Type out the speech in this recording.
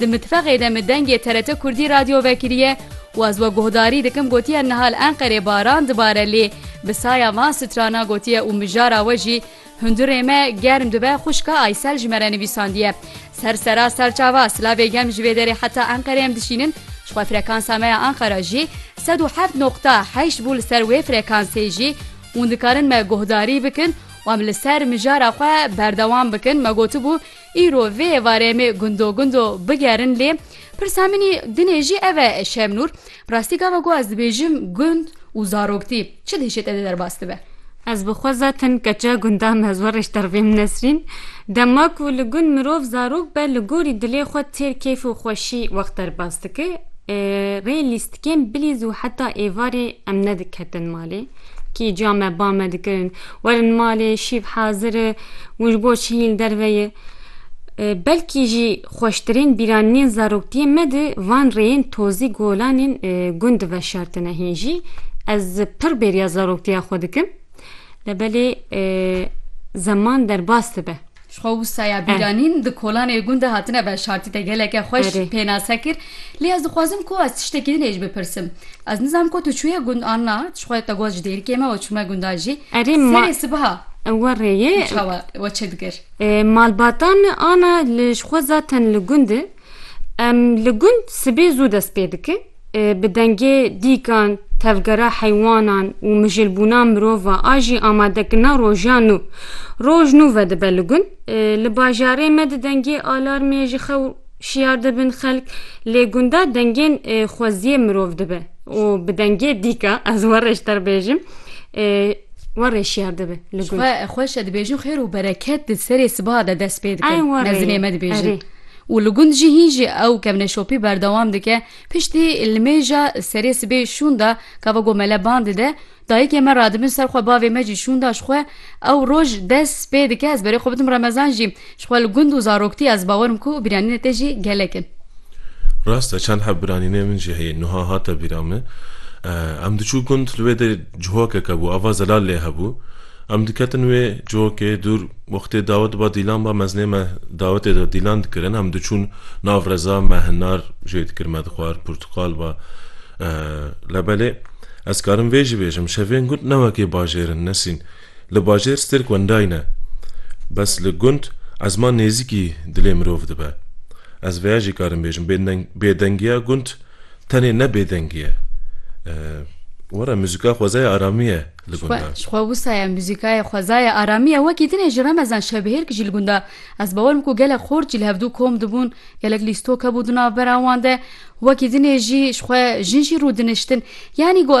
Di mitbexê de min dengê TRT Kurdî radyo vekiriye û ez we guhdarî dikim gotiye niha li Enqerê baran dibare lê bi saya van strana gotiye û mijara we jî Hundirê me germ dibe xwişka Aysel ji me re nivîsandiye Ser sera serçava silavê gem ji vê derê heta Enqerê em dişînin ji xwe frekansa me ya Enqera jî sed û heft noqta heşt bû li ser wê frekansê jî hûn dikarin me guhdarî bikin û em li ser mijara xwe berdewam bikin me gotibû Îro vê êvarê em ê gundo gundo bigerin lê pirsa min î dinê jî ev e Şemnûr, bi rastî gava ku ez dibêjim gund û zaroktî çi dihişê te dê derbas dibe? Ez bi xwe zaten keça gundan me zor ê ji dervêm Nesrîn. Dema ku li gund mirov zarok be li gorî dilê xwe têr keyf û xweşî wext derbas dike. Rê lîstikên bilîz û heta êvarê em nediketin malê. Kî ca me ba me dikirin. Werin malê şîv hazir e û ji bo çiyên li derve ye. Belkî jî xweştirên bîranînên zaroktiyê me di van rêyên tozî golanên gund di veşartine. Hîn jî ez pir bêriya zaroktiya xwe dikim. Lebelê zeman derbas dibe. Ji xwe wisa ya bîranîn di kolanê gund de hatine veşartî te geleke xweş pênase kir. Lê ez dixwazim ku ez tiştekî din ê ji bipirsim. Ez nizanim ku tu çûye gund an na, ji xwe te got ji dêrikê me we çûme gundan jî. Serê sibiha we rêyê çawa we çi dikir? Malbata me ana li ji xwe zaten li gund e. Em li gund sibê zû dest pê dikin. Bi dengê dîkan, tevgera heywanan û mijilbûna mirova a jî amadekirina rojan nû. Roj nû vedibe li gund. Li bajarê me di dengê alarmê ji xew şiyar dibin xelk, lê gunda dengên xweziyê mirov dibe û bi dengê dîka ez warê ji te re bêjim warê şiyar dibe li gund. Xweş e dibêjin xêr û bereket di serê sibaha de dest pê dikin. Mezinê me dibêjin. û li gund jî hîn jî ew kevneşopî berdewam dike, piştî li mêja serê sibê şûnda ka vego mele ban dide, dayikê me radibin ser xwe bavê me jî şûnda ji xwe, ew roj des pê dike ez berê xwe bidim remezan jî ji xwe li gund û zaroktî ez bawer im ku bîranînê te jî gelek in. Rast e çend heb bîranînê min jî heye nuha hate bîra min em diçû gund li wê de cihokeke bû ava zelal lê hebû, Em diketin wê cihokê dûr. Wextê dawet diba Dîlan ba mezinê me dawetê de Dîlan dikirin. Em diçûn nav reza me hinar jê dikir me dixwar purtiqal ba lebelê. Ez karim vê jî bêjim şevên gund ne wekê bajêr in Nesîn. Li bajêr stêrk wendayî ne. Bes li gund ezma nêzîkî dilê mirov dibe. Ez veya jî karim bêjim bêdengiya gund tenê ne bêdengiye. Were muzika xwezaya aramî ye. li gunda. Ji xwe wisa ye muzîka ye, xweza ye, aramî ye. Wekî din e ji Remezan Şebihêrk jî li gunda. Ez bawer dikim ku gelek xort jî li hevdu kom dibûn, gelek lîstok hebû di navbera wan de. Wekî din e jî ji xwe jin jî rûdiniştin. Yanî got ez